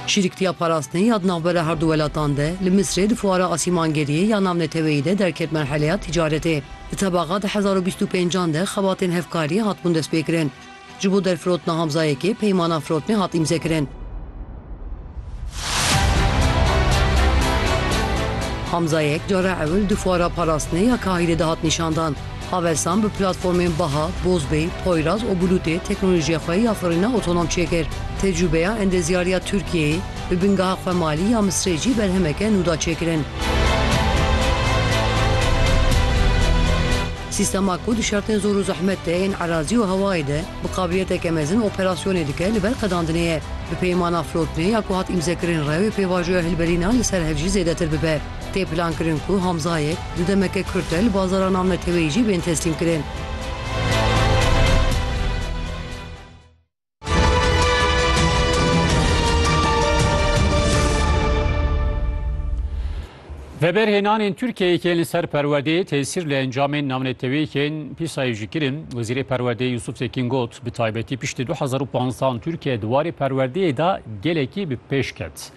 Şîriktiya parastinê ya di navbera her du welatan de li Misrê di fuara asîmangeriyê ya navneteweyî de derket merheleya tîcaretê. Di tebaqa du hezar û bîst û pênc an de xebatên hevkarî hatibûn destpêkirin. Ji bo derfirotina Hamzayekê peymana firotinê hat îmzekirin. Hamzayek cara ewil di fuara parastinê ya Kahîrê de hat nîşandan. Havesan bi platformên Baha, Bozbey, Poyraz û Bulutê teknolojiya xwe ya xurîna otonom çêkir. Tecrûbeya endezyariya Tirkiyeyê bi bingeha xwe malî ya Misrê jî berhemeke nû da çêkirin. Sîstema ku di şertên zor û zehmet de ên erazî û hewayê de bi qabiliyeteke mezin operasyonê dike li ber qedandinê ye. Bi peymana Flotnê ya ku hat îmzekirin re wê pêvajoya hilberîna li ser hev jî zêdetir bibe. Tê plankirin ku Hamzayek di demeke kurt de li bazara navneteweyî jî bên teslîmkirin. Veberhênanên Tirkiyeyê yên li ser perwerdeyê tesîr li encamên navneteweyî yên pîsayê jî kirin. Wezîrê Perwerdeyê Yusuf Tekîn got, bi taybetî piştî du hezar û panzdeh an Tirkiye di warê perwerdeyê de gelekî bi pêş ket.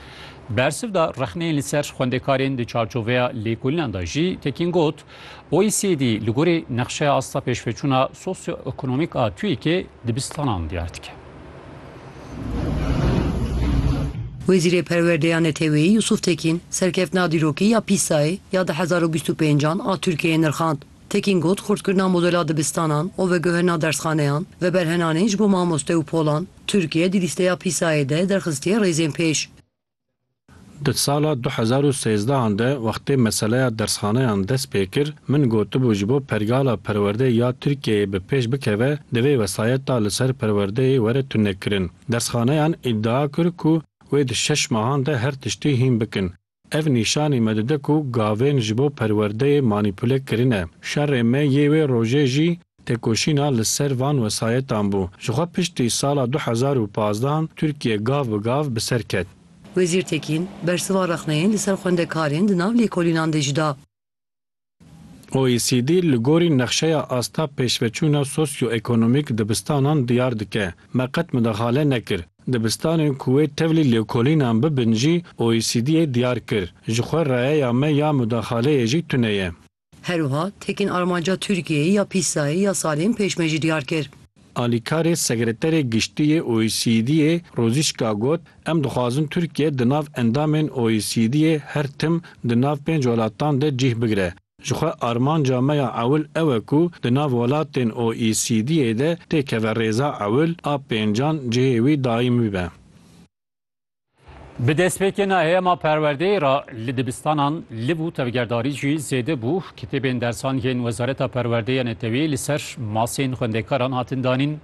Bersiv da rexneyên li ser xwendekarên di çarçoveya lêkolînan de jî, Tekîn got, OECD li gorî nexşeya asta pêşveçûna sosyoekonomîk a TUYKê dibistanan diyar dike. Wezîrê Perwerdeyê ya Neteweyî Yusuf Tekîn serkeftina dîrokî ya PISAyê ya du hezar û bîst û pênc an a Tirkiyeyê nirxand. Tekîn got, Xurtkirina modela dibistanan û veguherina dersxaneyan, veberhenanê ji bo mamoste û polan, Tirkiye di lîsteya PISA-yê de derxistiye rêzên pêş. Di sala du hezar û sêzdehan de wextê meseleya dersxaneyan dest pê kir, min gotibû ji bo pergala perwerdê ya Tirkiyeyê bi pêş bikeve divê wesayeta li ser perwerdeyê were tunekirin. Dersxaneyan îdia kir ku wê di şeş mahan de her tiştî hîn bikin. Ev nîşanî me dide ku gavên ji bo perwerdeyê manîpule kirine. Şerê me yê wê rojê jî têkoşîna li ser van wesayetan bû. Ji xwe piştî sala du hezar û pazdeh an Tirkiye gav bi gav bi ser ket. Wezîr Tekîn, bersiva rexneyên li ser xwendekarên di nav lêkolînan de jî da. OECD li gorî nexşeya asta pêşveçûna sosyoekonomîk dibistanan diyar dike. Me qet midexale nekir. Dibistanên ku wê tevlî lêkolînan bibin jî OECD'ê diyar kir. Ji xwe rayeya me ya mudexaleyê jî tune ye. Herwiha tekîn armanca Tirkiyeyê ya pîsayê ya salên pêş me jî diyar kir. Alîkarê Sekreterê Giştî yê OECD'ê Rosîçka got, Em dixwazin Tirkiye di nav endamên OECD'ê her tim di nav pênc welatan de cih bigire. Ji xwe armanca me ya ewil ew e ku di nav welatên OECD'ê de tê keve rêza ewil a pêncan cihê wî daîm bibe. Bi destpêkên heyema perwerdeyê re li dibistanan liv û tevgerdarî jî zêde bû. Kitêbên dersan yên Wezareta Perwerdeya Neteweyê li ser masên xwendekaran hatin danîn.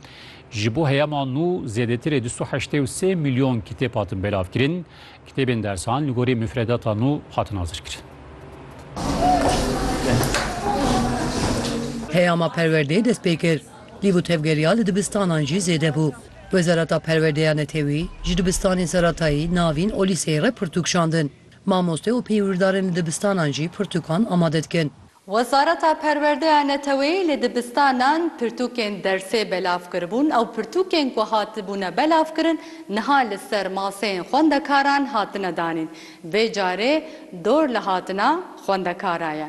Ji bo heyema nû zêdetirê du sed û heştê û sê milyon kitêb hatin belavkirin. Kitêbên dersan li gorî mifredata nû hatin hazirkirin. Heyama perwerdeyê dest pê kir. Lîv û tevgeriya li dibistanan jî zêde bû. Wezareta Perwerdê ya Netewî ji dibistanên seratayî, navîn û lîseyê re pirtûk şandin. Mamoste û peywirdarên li dibistanan jî pirtûkan amade dikin. Wezareta Perwerdê ya Netewî li dibistanan pirtûkên dersê belav kiribûn. Ew pirtûkên ku hatibûne belavkirin niha li ser maseyên xwendekaran hatine danîn. Vê carê dor li hatina xwendekarayê.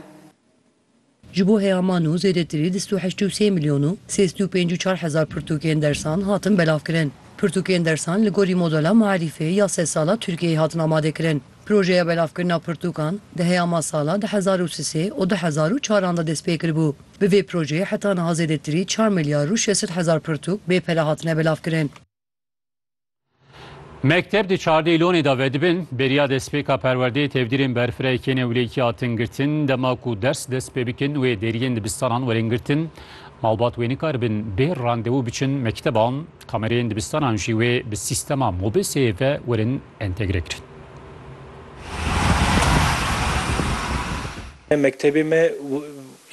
Ji bo heyaman û zêdetirî du sed û heşt û sê milyon û sê sed û pêncî û çar hezar pirtûkên dersan hatin belavkirin. Pirtûkên dersan li gorî modela Maarîfê ya sed sal a Tirkiyeyê hatin amadekirin. Projeya belavkirina pirtûkan di heyama sala du hezar û sisê û du hezar û çaran de destpêkiribû. Bi vê projeyê heta niha zêdetirî çar milyar û şeş sed hezar pirtûk bê pere hatine belavkirin. Mekteb di çardê lonê de vedibin, beriya destpêka perwerdeyê tevdîrên berfireyê kêne wlêkî hatin girtin, dema ku ders dest pê bikin wê deriyên dibistanan werin girtin. Malbat wê nikaribin bê randevû biçin mekteban, kamereyên dibistanan jî wê bi sîstema mobeseyê ve werin entegre kirin. Mektebê me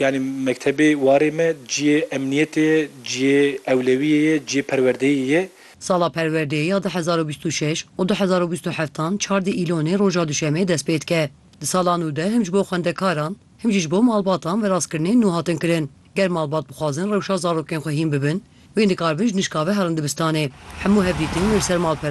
Yanî mektebê warê me ciyê emniyetê ye, ciyê ewlewiyê ye, ciyê perwerdeyê ye. Sala perwerdeyê ya du hezar û bîst û şeş û du hezar û bîst û heft an çar di Îlonê roja duşemê dest pê dike. Di sala nû de him ji bo xwendekaran him jî ji bo malbatan veraskirinên nû hatin kirin. Ger malbat bixwazin rewşa zarokên xwe hîn bibin wê dikaribin ji nişka ve herin dibistanê. Hemû hevdîtin wê li ser malpera